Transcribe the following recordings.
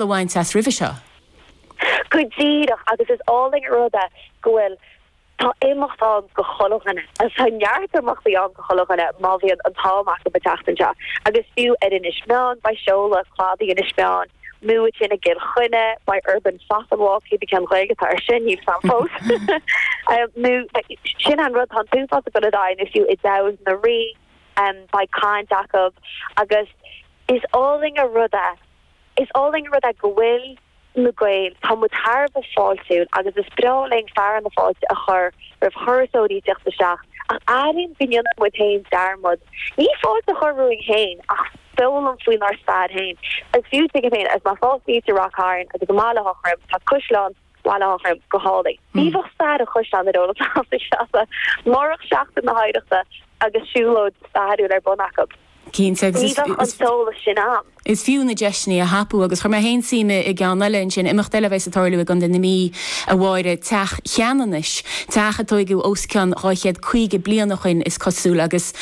a bhaint as roimhe seo. Go díreach agus is álainn an rud é go bhfuil, tá imeachtaí ann go chuile dhuine, tá neart imeachtaí ann go chuile dhuine má bhíonn an t-am acu an tseachtain seo agus fiú ar Inis Meáin beidh seoladh Cladaí Inis Meáin, moicheirí i gCill Chainnigh, beidh Urban Fat and Walk, cé bith cén Ghaeilge atá ar sin, níl 's agam fós! nó sin an rud, tá an t-uafás a gcuile dhá imeacht fiú i dTamhain na Rí, beidh caint acu agus is álainn an rud é, Is álainn an rud é go bhfuil na Gaeil, tá muid thar a bheith fáiltiúil agus is breá linn fearadh na fáilte a chur roimh thurasóirí ag tíocht isteach ach airím go ndéanann muid féin dearmad, ní fáilte a chur romhainn féin ach foghlaim faoinár stair féin agus fiú, tuigim féin, agus má fhágann tú Ráth Chairn agus ar an mbealach go hÁth Troim tá Caisleán. Bhaile Átha Troim go hálainn. Ní bheadh stair an Chaisleáin ar eolas acu sa siopa murach Seachtain na hOidhreachta agus siúlóid stairiúil ar bun acu. Cinnte, agus is fiú. Ní bheadh an t-eolas sin ann. Is fiú na deiseanna a thapú agus chuir mé féin suim i gceann eile ansin, imeacht eile a bheas ag tarlú i gContae na Mí, a Mháire, Teach Cheanannais, teach a tóigeadh os cionn dhá chéad caoga bliain ó shoin, is cosúil, agus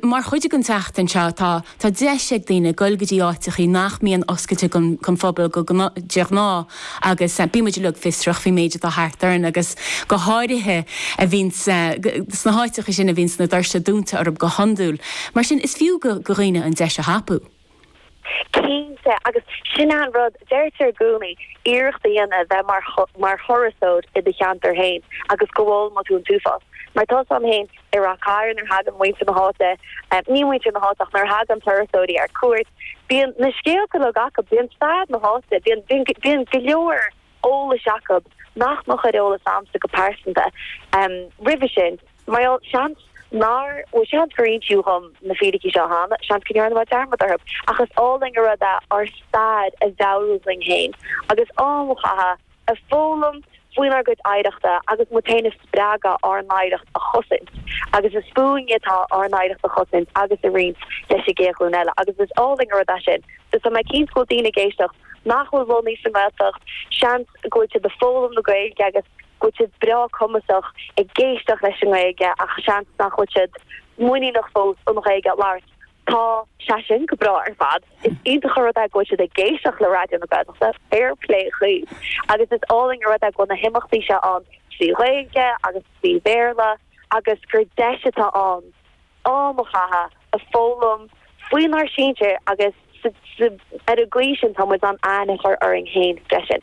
mar chuid den tseachtain seo tá. Tá deis ag daoine goil go dtí áiteachaí nach mbíonn oscailte don phobal go de ghnáth agus bíonn muid uilig fiosrach faoin méid atá thart orainn agus go háirithe a bhíonn sna háiteachaí sin a bhíonns na doirse dúnta orthub go hiondúil. Mar sin is fiú go dhaoine an deis a thapú. Cinnte, agus sin é an rud, deirtear i gcónaí, iarracht a dhéanamh bheith mar thurasóir i do cheantar fhéin agus go bhfoghlaimeoidh tú an t-uafás. Mar tá 's agam fhéin, I Ráth Chairn nuair a thagann muintir na háite, ní muintir na háite ach nuair a thagann turasóirí ar cuairt, bíonn na scéalta uilig acu, bíonn stair na háite, bíonn go leor eolais acu nach mbeadh ar eolas agamsa go pearsanta roimhe sin. Mar gheall, seans, nár, bhuel, seans gur insíodh dhom na fíricí seo cheana, seans go ndearna mé dearmad orthu, ach is álainn an rud é ár stair a mheabhrú dhuinn féin agus am a chaitheamh, a foghlaim faoinár gcuid oidhreachta agus muid féin a spreagadh ár n-oidhreacht a chosaint. Agus is fúinn atá ár n-oidhreacht a chosaint agus a roinnt leis an gcéad ghlúin eile. Agus is álainn an rud é sin. So tá mé cinnte go bhfuil daoine ag éisteacht nach bhfuil lonnaithe sa nGaeltacht, seans go bhfuil siad ag foghlaim na Gaeilge agus go bhfuil siad breá cumasach ag éisteacht leis an nGaeilge ach seans nach bhfuil siad muiníneach fós an Ghaeilge a labhairt. Tá sé sin go breá ar fad. Is iontach an rud é go bhfuil siad ag éisteacht le Raidió na Gaeltachta, fair plé dhaoibh, agus is álainn an rud é go bhfuil na himeachtaí seo ann trí Ghaeilge agus trí Bhéarla agus gur deis atá ann am a chaitheamh a foghlaim faoinár sinsir agus ar an gcaoi sin tá muid in ann aithne a chur orainn féin freisin.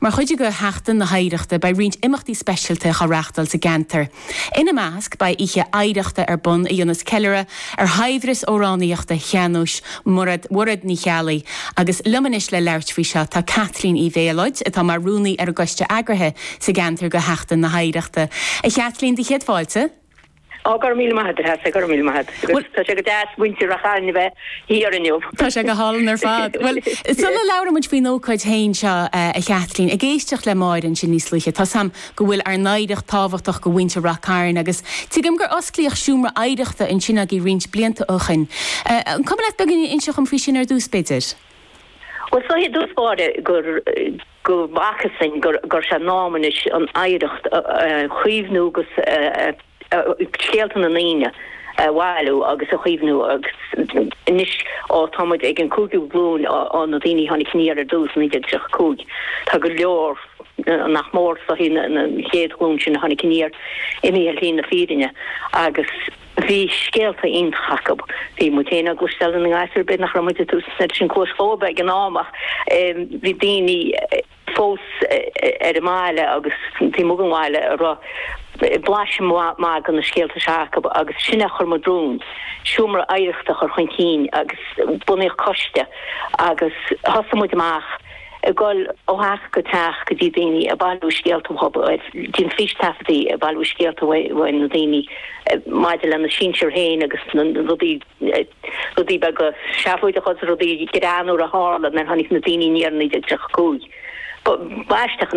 Mar chuid de Sheachtain na hOidhreachta beidh roinnt imeachtaí speisialta á reachtáil sa gceantar. Ina measc beidh oíche oidhreachta ar bun a dhéanfas ceiliúradh ar shaibhreas amhránaíochta shean-nóis Mhuraed, Mhuraed Ní Cheallaigh agus liom anois le labhairt faoi seo tá Caitlín Uí Mhéalóid atá mar rúnaí ar an gcoiste eagraithe sa gceantar de Sheachtain na hOidhreachta. A Chaitlín, do chéad fáilte. Ó go raibh míle maith agat as é go raibh míle maith agat agus tá sé go deas muintir Rath Chairn a bheith thiar inniu. Tá sé go hálainn ar fad. Bhuel sula labhrann muid faoin ócáid féin seo a Chaitlín, ag éisteacht le Máire ansin níos luaithe tá 's a'm go bhfuil ár n-oidhreacht tábhachtach do mhuintir Rath Cairn agus tuigim gur osclaíodh Seomra Oidhreachta ansin agaibh roinnt blianta ó shin. An cuma leat beagán a inseacht dhom faoi sin ar dtús b'fhéidir? Bhuel i dtús báire gur. go bhfacthas dhúinn go raibh sé in am anois an oidhreacht a chaomhnú agus scéalta na ndaoine a bhailiú agus a chaomhnú agus anois ó tá muid ag an cúigiú glúin ó na daoine a tháinig aniar ar dtús i 1935 tá go leor nach mór is dóichí an chéad ghlúin sin a tháinig aniar imithe ar shlí na fírinne agus Bhí scéalta iontacha acu. Bhí muid féin á gcloisteáil ina ngasúir b'fhéidir nach raibh muid ag tabhairt an oiread sin cluas dhóibh ag an am ach bhí daoine fós ar an mbaile agus taobh amuigh den bhaile a raibh blaiseadh maith de na scéalta seo acu agus sin é a chuir muid romhainn seomra oidhreachta a chur chun cinn agus bunaíodh coiste agus thosaigh muid amach ag dul ó theach go teach go dtí daoine ag bailiú scéalta uathu, ag déanamh fístaifeadtaí ag bailiú scéalta uaidh na daoine maidir lena sinsir féin agus na rudaí rudaí beaga seafóideacha agus rudaí greannmhara a tharla nuair a tháinig na daoine aniar i 1935. Ba aisteach